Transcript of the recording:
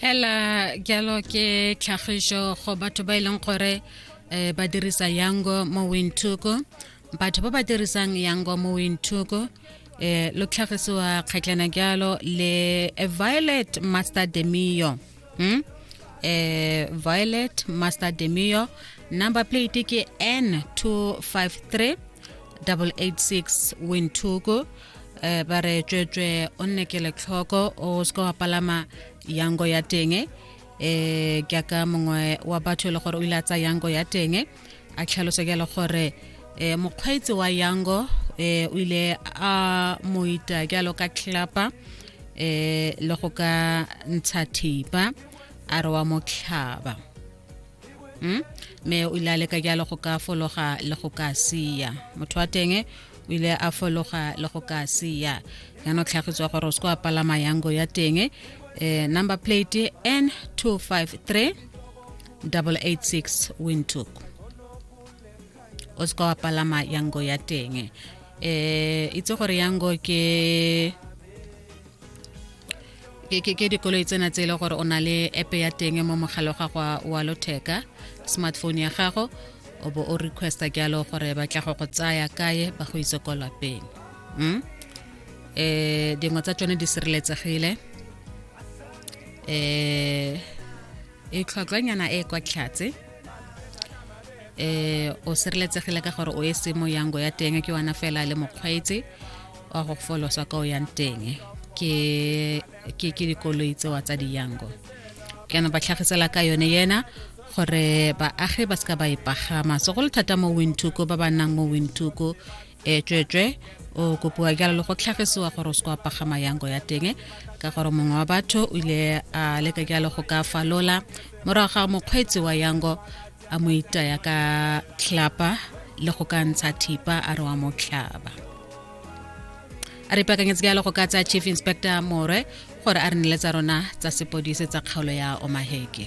hela jalo ke tlhagiso go batho ba e leng gore um ba dirisa yango mo wintoko batho ba ba dirisang yango mo wintoko um eh, lo tlhagisiwa kgatlana jalo le violet master demio hmm? eh, violet master demio number plate ke n 253 886 wintoko um ba re tswetswe o nne ke letlhoko o se ka wa palama yango ya teng um ke aka mongwe wa batho e le gore o ile a tsa yango ya teng a tlhalosa ke le gore um mokgweetsi wa yango um o ile a moita jalo ka tlhapa um le go ka ntsha thipa a re wa mo tlhaba mm? mme o ile a leka jalo go ka fologa le go ka sia motho wa teng o ile a fologa le go ka sia yana o tlhagitswa gore o se ko a palama yango ya teng eh, number plate n 253 886 windhoek o se ka wa palama yango ya teng eh itse gore yango ke ke ke ke dikoloi tsena tse e le gore o na le app ya teng mo mogala wa gago wa- wa lotheka smartphone ya gago o bo o requesta ke alo gore ba tla go go tsaya kae ba go itse ko lapeng mm? eh dingwe tsa tsone di sireletsegile eh e tlhwatlhwanyana e e kwa tlhatse eh o sireletsegile ka gore o e se mo yango ya teng ke wana fela le mokgweetsi wa go folosa ka o yang teng ke ke ke dikoloi tsewa tsa diyango kana ba tlhagisela ka yone yena gore baagi ba seka ba e pagama so go le thata mo wintuko ba ba nnang mo wintuko e tswetswe o kopiwa jalo le go tlhagisiwa gore o se kwa pagama yango ya teng ka gore mongwe wa batho o ile a leka jalo go ka falola morago ga mokgweetsi wa yango a mo itaya ka tlhapa le go ka ntsha thipa a re wa mo tlhaba a re pakanyetse jalo go ka tsaya chief inspector more gore a re nele tsa rona tsa sepodise tsa kgaolo ya omaheke